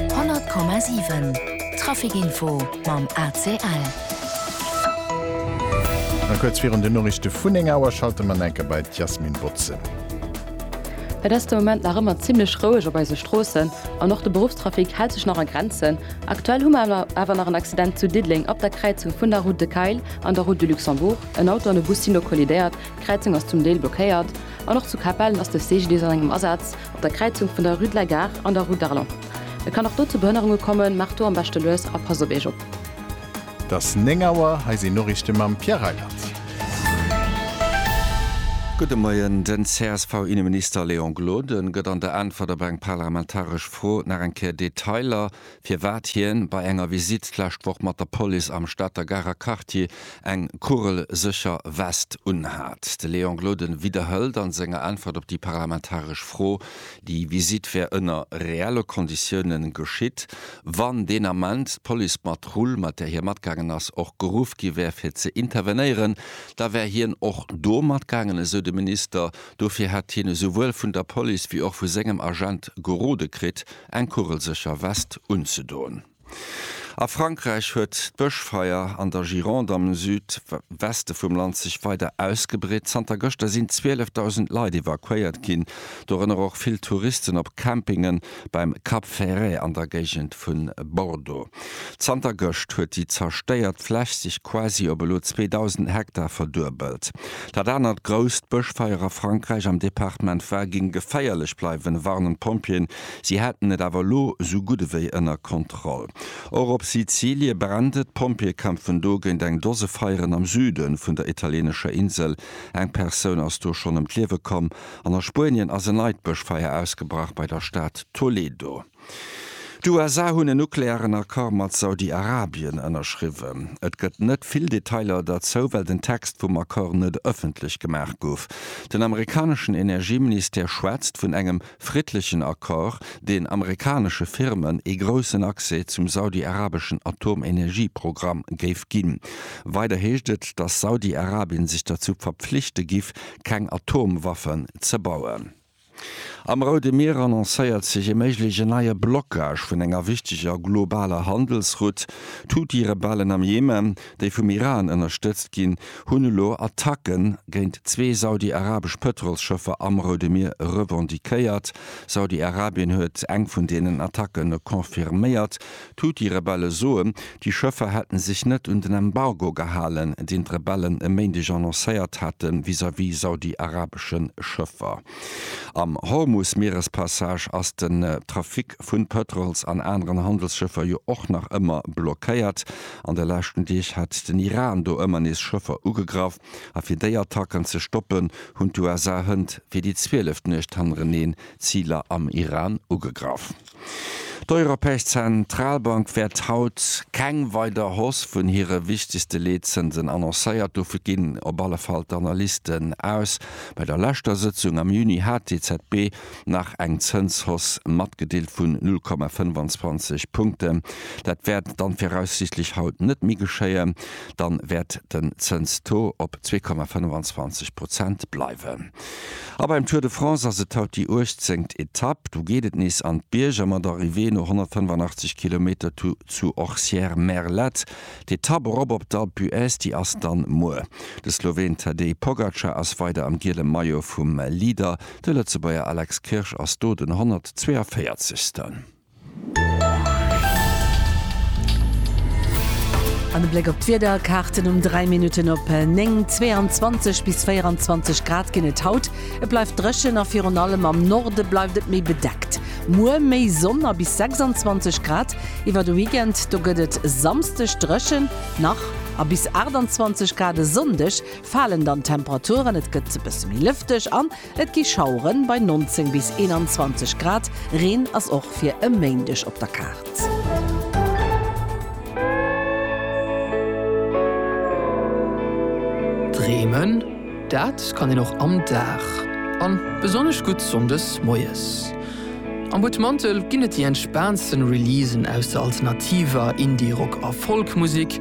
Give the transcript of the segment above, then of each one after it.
100,7 Traficinfo mam ACL. A kuerz virun den Noriichte vun 9 Auer schalte mer enke bei d'Jasmin Botzen. Et ass de Moment nach ëmmer zimmlech roueg op eise Stroossen an och de Beruffstrafic hält sech nach a Grenzen. Aktuell hu mer awer nach en Accident zu Diddeleng op der Kräizung vun der Route de Kayl an der Route de Luxembourg. En Auto an e Bus sinn do kollidéiert, d'Kräizung ass zum Deel blockéiert. An och zu Capellen ass de CGDIS an engem Asaz. Op der Kräizung vun der Rue de la Gare an der Rue d'Arlon. Et kann och do zu Behënnerunge kommen, maacht do am beschte lues a passt op Iech op. Et ass 9 Auer, hei sinn d'Noriichte mam Pierre Reyland. Gudde Moien. Den CSV-Inneminister Léon Gloden gëtt an der Äntwert op eng parlamentaresch Fro nach eng Kéier Detailer firwat hien bei enger Visitt d'lescht Woch mat der Police am Stater Garer Quartier eng kugelsécher West unhat. De Léon Gloden widderhëlt an senger Äntwert op déi parlamentaresch Fro, déi Visitt wär ënner reelle Konditiounen geschitt, wann deen Ament d'Policepatrull, mat där hie matgaangen ass, och geruff gi wär fir ze intervenéieren, da wär hien och do matgaangen, esou de Minister. Dofir hätt hien esouwuel vun der Police wéi och vu sengem Agent gerode kritt, eng kugelsécher West unzedoen. A Frankräich huet d'Bëschfeier an der Gironde am Süd Weste vum Land sech weider ausgebreet. Zanter gëschter sinn 12.000 Leit evakuéiert ginn, dorënner och vill Touristen op Campingen beim Cap Ferret an der Géigend vu Bordeaux. Zanter gëscht huet déi zerstéiert Fläch sech quasi op elo 2.000 Hektar verduebelt. Dat anert grousst Bëschfeier a Frankräich am Departement Var géing geféierlech bleiwen, warnen d'Pompjeeën. Si hätten et awer elo esou gutt ewéi ënner Kontroll. Och op Sizilie brennt et. D'Pompjeeë kämpfen do géint eng Dose Feieren am Süde vun der italieenescher Insel. Eng Persoun ass do schonn ëm d'Liewe komm. An a Spuenien ass en neit Bëschfeier ausgebrach bei der Stad Toledo. D'USA hunn en nuklearen Accord mat Saudi-Arabien ënnerschriwwen. Et gëtt net vill Detailer derzou, well den Text vum Accord net ëffentlech gemaach gouf. Den amerikaneschen Energieministère schwätzt vun engem friddlechen Accord, deen amerikanesche Firmen ee groussen Accès zum saudi-arabeschen Atomenergieprogramm géif ginn. Weider heescht et, datt Saudi-Arabien sech derzou verpflichte giff, keng Atomwaffen ze bauen. Am Roude Mier annoncéiert sech e méigleche neie Blockage vun enger wichteger globaler Handelsrout. D'Huthi-Rebellen am Jemen, déi vum Iran ënnerstëtzt ginn, hunn elo Attacke géint zwee saudi-arabesch Pëtrolsschëffer am Roude Mier revendiquéiert. Saudi-Arabien huet eng vun deenen Attacke confirméiert, D'Huthi-Rebelle soen, déi Schëffer hätten sech net un den Embargo gehalen, deen d'Rebellen e Méindeg annoncéiert hate vis-à-vis saudiarabesche Schëffer. Am Hormus-Mierespassage ass den Trafic vun Pëtrols an aneren Handelsschëffer jo och nach ëmmer blockéiert. An de leschten Deeg hat den Iran do ëmmer nees Schëffer ugegraff. A fir déi Attacken ze stoppen, hunn d'USA hënt fir déi zwieleft Nuecht hannereneen Ziler am Iran ugegraff. D'Europäesch Zentralbank wäert haut keng weider Hausse vun hire wichtegste Leetzënsen annoncéiert. Dovu ginn op alle Fall d'Analysten aus. Bei der leschter Sëtzung am Juni hat d'EZB nach eng Zënshausse matgedeelt vun 0,25 Punkten. Dat wäert dann viraussiichtlech haut net méi geschéien. Dann wäert den Zënstaux op 2,25 Prozent bleiwen. A beim Tour de France ass et haut déi uechtzengt Etapp. Do geet et nees an d'Bierger mat Arrivée no 185 Kilometer zu Orcières-Merlette. D'Etapp erop op d'Alpe d'Huez, déi ass dann muer. De Sloween Tadej Pogacar ass weider am giele Maillot vum Leader. De Lëtzebuerger Alex Kirsch ass do den 142. An e Bléck op d'Wiederkaarten um 3 Minutten op 9, 22 bis 24 Grad ginn et haut. Et bleift dréchen a virun allem am Norde bleift et méi bedeckt. Muer méi Sonn a bis 26 Grad. Iwwer de Weekend do gëtt et Samsdeg dréchen nach a bis 28 Grad. E Sonndeg falen dann d'Temperaturen, et gëtt e bësse méi lëfteg an Et gi Schauere bei 19 bis 21 Grad, Reen ass och fir e Méindeg op der Kaart. Dreemen, dat kann een och am Dag, an besonnesch gutt Sonndes moies. Am Butmantel ginn et déi entspaantsten Releasen aus der alternativer, Indie-, Rock a Folk-Musek.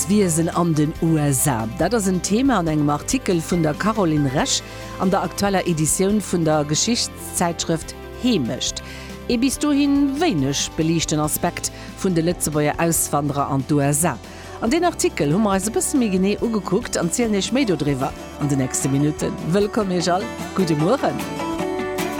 D'Wiesen an den USA, dat ass en Thema an engem Artikel vun der Caroline Resch an der aktueller Editioun vun der Geschichtszäitschrëft Heemecht. Ee bis dohi wéineg beliichten Aspekt vun de Lëtzebuerger Auswanderer an d'USA. An deen Artikel hu mer eis e bësse méi genee ugekuckt an zielen Iech méi dodriwwer an de nächste Minutten. Wëllkomm Iech all, gudde Mueren.